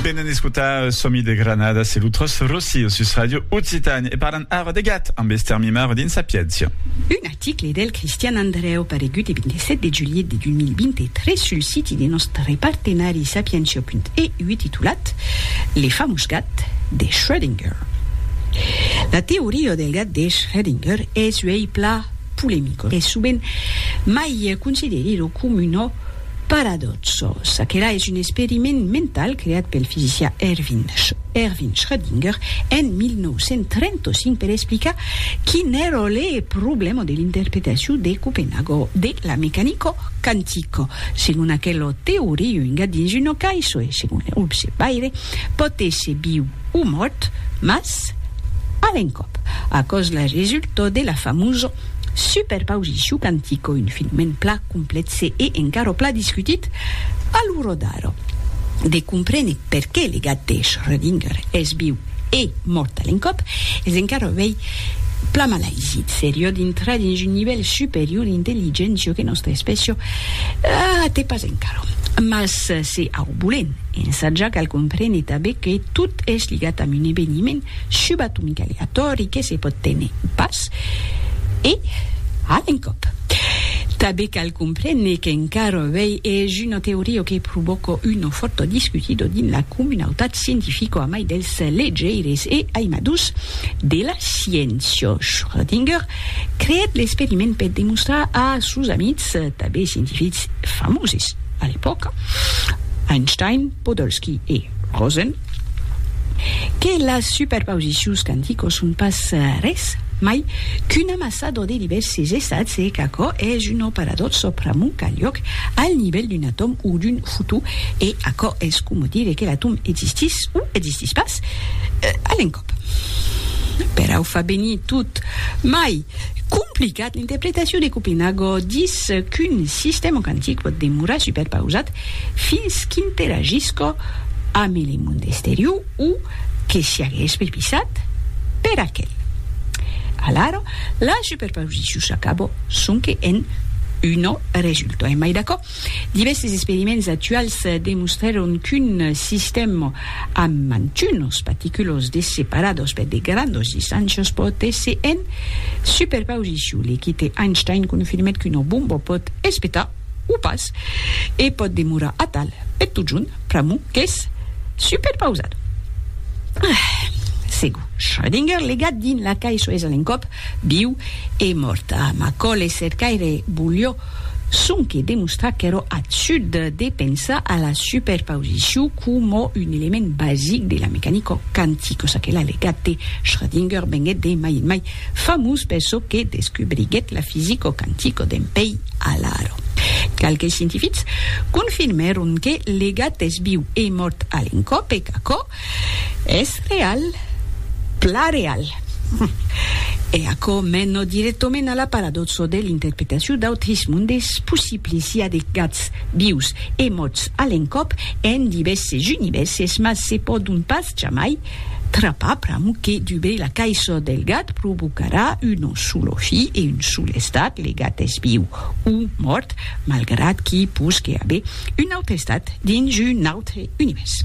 Venen escotar Somi de Granada, se lo Tros Rossio sus Radio Occitània e parlan ara de gat amb Esther Mimar dins Sapiéncia. Un article del Cristian Andrèu paregut e 27 de julhet de 2023 sul siti de nòstre partenari sapientia.eu titulat Le famós gat de Schrödinger. La teoria del gat de Schrödinger es uèi plan polemicos e sovent mai considerida com una Paradòxos, aquela es un experiment mental creat pel fisicià Erwin Erwin Schrödinger en 1935 per explicar quin èra le problèma de l'interpretacion de Copenhago de la mecanica quantica. Segon aquela teoria, un gat dins una caissa e, segon le rubs e paire, pòt èsser viu o mòrt, mas a l'encòp. Aquò's la resulta de la famosa Super pausicu cantico un filmèn pla complètse e encara pla discutit a lo rodar de comprene perqué le gat de Schrödinger es viu e mort a l'encòp es encara uèi pla malaisi seriò d'intrar dins un nivèl superior d'intelligéncia que nòstra espècia a te pas encara mas se au bolen ensatjar cal comprene tanben que tot es ligat amb un eveniment subatomic'a aleatòri que se pòt téner pas, e a l'encòp. Tanben cal comprene qu'encara avei es una teoria que provòca una fòrta discutida dins la comunautat scientifica amai dels legeires e aimadors de la sciéncia. Schrödinger creèt l'experiment per demostrar a sos amics, tanben scientifics famoses a l'epòca, Einstein, Podolsky e Rosen, que las superpausicions quanticos son pas res mai qu'un amassador de divèrses estats e qu'aquò es un operador-sò pr'amont qu'a liòc al nivèl d'un atòm o d'un fotó e aquò es coma dire que l'atòm existís o existís pas a l'encòp. Perau fa venir tot mai complicat, l'interpretacion de Copenhago dis qu'un sistèma quantic pòt demorar superpausat fins qu'interagisca amb le monde exterior o que siagues pripisat per aquel. Alara, la superposicion s'acaba sonque en una resulta. Emai d'aquò, divèrses experiments actuals demostrèron qu'un sistèm amb mantunas particulas de separadas per de grandas distàncias pòt èsser en superposicion. L'equite Einstein confirmèt qu'una bomba pòt espetar o pas, e pòt demorar atal per totjorn, pr'amor qu'es superpausat. Ah! Segur, Schrödinger legat dins la cai soes a l'encòp, viu e mòrt. Ah, Macaulay cercaire volió sonque demostrar qu'èra absurd de pensar a la superpausicion coma un element basic de la mecanica quantica, çaquelà legat de Schrödinger venguèt de mai en mai Famós per çò que descubriguèt la fisico quantico d'en Pei Alaro. Qualques scientifics confirmèron que le gat es viu e mòrt a l'encòp e qu'aquò es real, plan real. E aquò mena dirèctament a la paradòxa de l'interpretacion d'autres mondes possibles, i a de gats vius e mòrts a l'encòp en divèrses univèrses, mas se pòdon pas jamai Trapar pram que dubei la caisò del gat provocarà un solo fi e un sol estat, le gat es viu o mòrt, malgrat qu'i posque aver un aute estat dins un aute univèrs.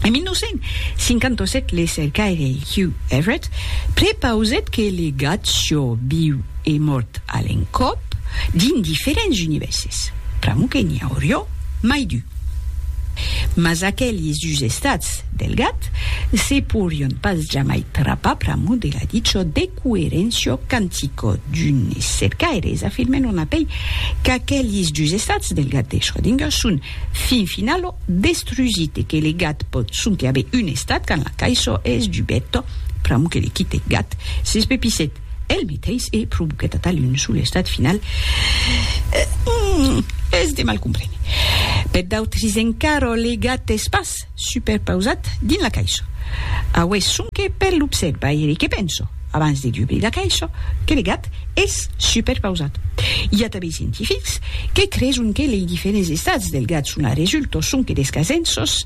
En 1957 le cercaire Hugh Everett prepausèt que le gat sió viu e mòrt a l'encòp dins diferents univèrses, pr'amor que n'i aurió mai du. Mas aqueli susestats del gat se porion pas jamai trapar pr'amor de la dicho de coerencio cantico d'unes cercaires afirmen on apei qu'aqueli susestats del gat de Schrödinger son fin finalo destrusits e que le gat pòt sonque aver un estat quand la caisson es dubeta pr'amor que le quite gat s'espepissèt El meteis e provoquèt atal un solestat final qu'es de mal comprene. Per d'autris encara le gat es pas superpausat dins la caissa. Aué sonque per l'observaire que penso, abans de dubrir la caissa, que le gat es superpausat. I a tanben scientifics que creson que lei diferents estats del gat son a resulta sonque d'escasenços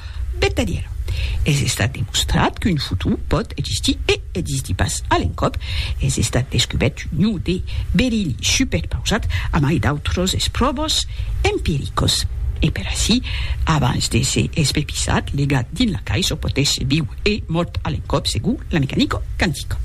Vertadièra. Es estat demostrat qu'un futur pòt existir e existir pas a l'encòp. Es estat descubèrt un ion de berili superpausat amai d'autras espròvas empiricas. E per aicí, abans de se espepisat, legat dins la caissa, pòt èsser viu e mòrt a l'encòp segon la mecanica quantica.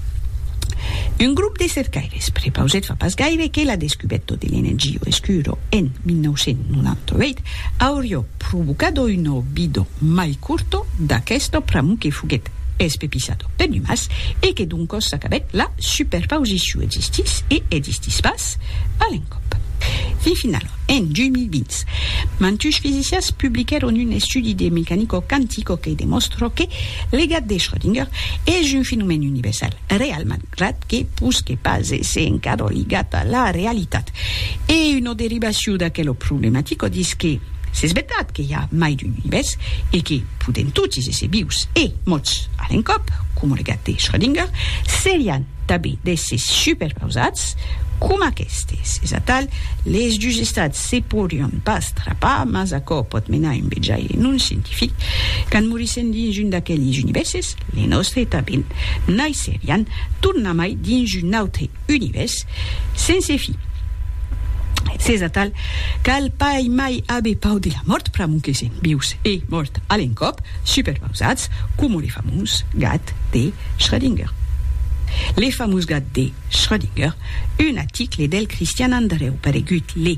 Un grop de cercaires prepausèt fa pas gaire que la descubèrta de l'energia escura en 1998 auriá provocado uno bido mai curto d'aquesto pramo que foguèt espepisado per numas e que doncos s'acabèt la superpausiciu existís e existís pas a l'encòp e finalent en 2020 mantush fisicians publiquèron un estudi de mecanico quantico que demòstra que legat de Schrödinger es un fenomèn universal realman Ret que posque pas èsser encara ligat a la realitat. E una derivacion d'aquela problematica dins que s'es vertat que i a mai d'un univèrs e que podèm totis èsser vius e mòrts a l'encòp, coma lo gat de Schrödinger, serián tanben d'èssers superpausats coma aquestes. Es atal, les dus estats se podrián pas trapar, mas aquò pòt menar un vejaire non scientific. Quand morissèm dins un d'aqueles univèrses, Les nòstre tanben naisserián tornamai dins un autre univèrs sense fi. S'es atal, cal pas mai aver pau de la mòrt pr'amor que sèm vius e mòrt a l'encòp, superpausats coma le famós gat de Schrödinger. Le famós gat de Schrödinger, un aticle del Cristian Andrèu paregut le